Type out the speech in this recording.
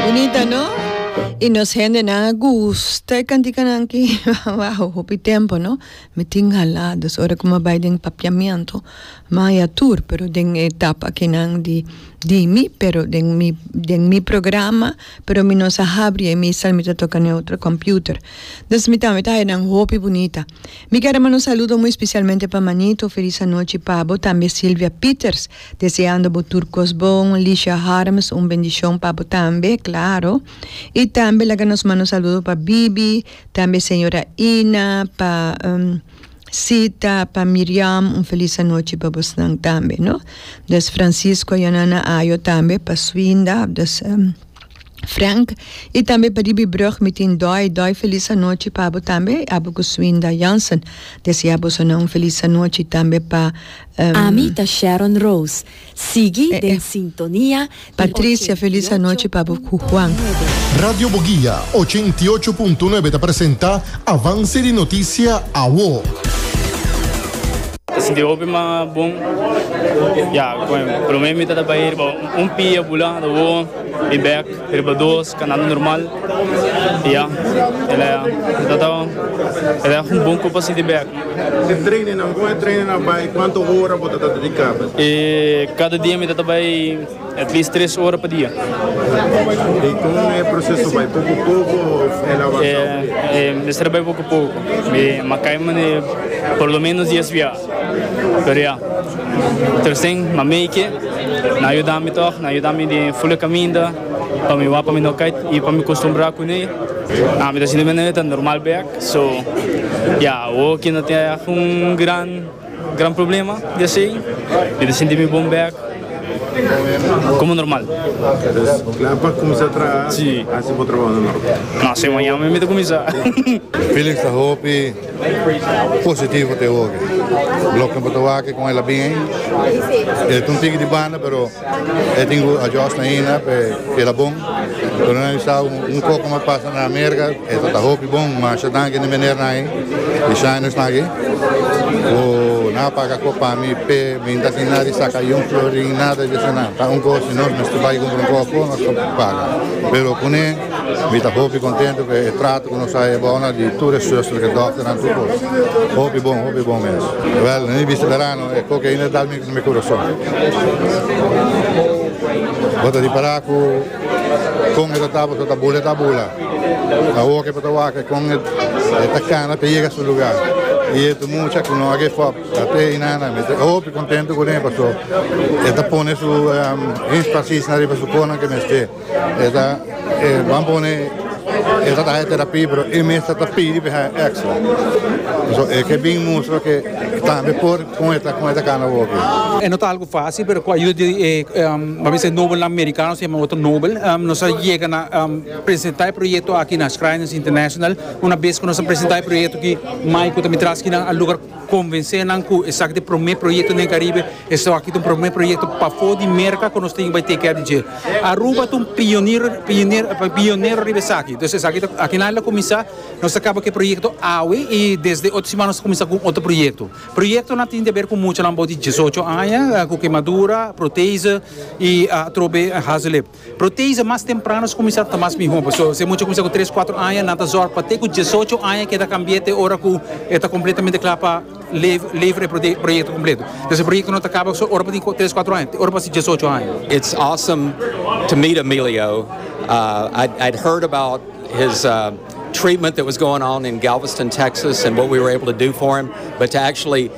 Bonita no? Y nos hendenan a gusta e cantikanan ki wao hopi tempo no mi tin hala dus ora cu mi a bay den papiamento mi a haya tur pero den e etapa akinan di di mi pero den mi den mi programa pero mi no sa habri e misa mi ta toca neutro computer dus mi tambe ta haya nan hopi bunita mi ker a manda un saludo muy specialmente pa Manito feliz anochi pabo tambe Silvia Peters Deseando bo tur cos bon Lisha Harms un bendicion pa bo tambe claro y tambe laga nos manda un saludo pa Bibi tambe señora Ina pa Sita pa Miriam un feliz anochi pa bosnan tambe no dus Francisco ya nan na ayo tambe pa Swinda dus Frank y tambe pa ribi brug mi tin Doy Doy feliz anochi pa bo tambe abo cu Swinda Jansen desea bosonan un feliz anochi tambe pa Ami ta Sharon Rose. Sigui den sintonia di ochentiocho punto nuebe. Radio Boguia, ochentiocho punto nuebe ta presenta Avance di Noticia Awo. E sinti hopi mas bon ya con e prome mi ta ta bay riba un pie a bula ta won y bek riba dos canando normal y ya elei a mi ta ta elei a un bon copa si di bek. E traininnan, con e training a bay cuanto ora bo ta ta dedica? E cada dia mi ta ta bay at least tres ora pa dia. Y con e proceso bay poco poco of el avanza hopi? E, e mester bay poco poco. Mi makai mane por lo menos diez via. Pero ya, tercen ma make nan yuda mi toch, nan yuda mi den fula caminda pa mi wak pa mi no kait y pa mi costumbra cune. Mi ta sinti manera ta normal bek. So ya awo ki no tin yak un gran gran problema di asei mi ta sinti mi bon bek komo normal. Entonces kla pa kuminsá traha hasi bo trabou na Norte? No asei mañana mi ta kuminsá. Felix ta hopi positivo te hopi. Bloknan pa ta wak kon el a bin ei. El ta un tiki di banda pero. E tin cu adjust na Hina pa e keda bon. Cuando nan bisa un poco mas pasa na America e ta ta hopi bon. Masha danki di meneer nan ey di Shines nan aki cu nan a paga cop pa mi pe mi ta tin nada di saca ayi un florin nada di esena. Ta un gosi nos mester bay cumpra un cop nos cop paga. Pero cune mi ta hopi contento cu e trato cu nos a hay ebao nan di tur e zusternan doctornan tur cos. Hopi bon hopi bon mes. Well nan a bisa verano e cop cu a Hina dal mi. Mi corazon bo ta dipara cu con e ta taba so ta bula e ta bula. Awo ke bo ta wak con e ta cana ta yega su lugar. Y e mucha cu no a give up ate y nana mi ta hopi contento cuden paso e ta pone su empasis na riba su conan ke mester. E ta e ban pone e ta haña terapia pero e mester ta pidi pa e haña extra. So e ke bin mustra ke tambe por kon e ta kon e ta kana woki. E no ta algu facil pero ku ayuda di e mi bisa e nobelnan mericano se yama Otto Nobel nos a yega na presenta e proyecto aki na Shriners International. Una bes ku nos a presenta e proyecto aki mai ku ta mi traskinan a lugar. Konvensé nan ku esaki ta e promé proyekto den Karibe, esaki ta un promé proyekto pafó di Merka ku nos tin ke bai teikia di dje. Aruba ta un pioniro pionero riba esaki. Entonces esaki ta aki nan el a kuminsá, nos ta kaba ku e proyekto awe i desde otro siman nos ta kuminsá ku un otro proyekto. Proyektonan tin di haber ku muchanan abou di diesocho aña, ku kemadura, protese i atrobe hazelip. Protease mas temprano ta kuminsá ta mas mihó. Pasobra si e mucha kuminsá ku tres, kuatro aña, nan ta zòrg pa te ku diesocho aña keda kambié te ora ku e ta kompletamente kla pa lever e proyekto kompleto. Entonces e proyekto no ta kaba so ora bo tin ku tres, kuatro aña, te ora bo hasi diesocho aña. It's awesome to meet Emilio. I'd heard about his treatment that was going on in Galveston, Texas and what we were able to do for him, but to actually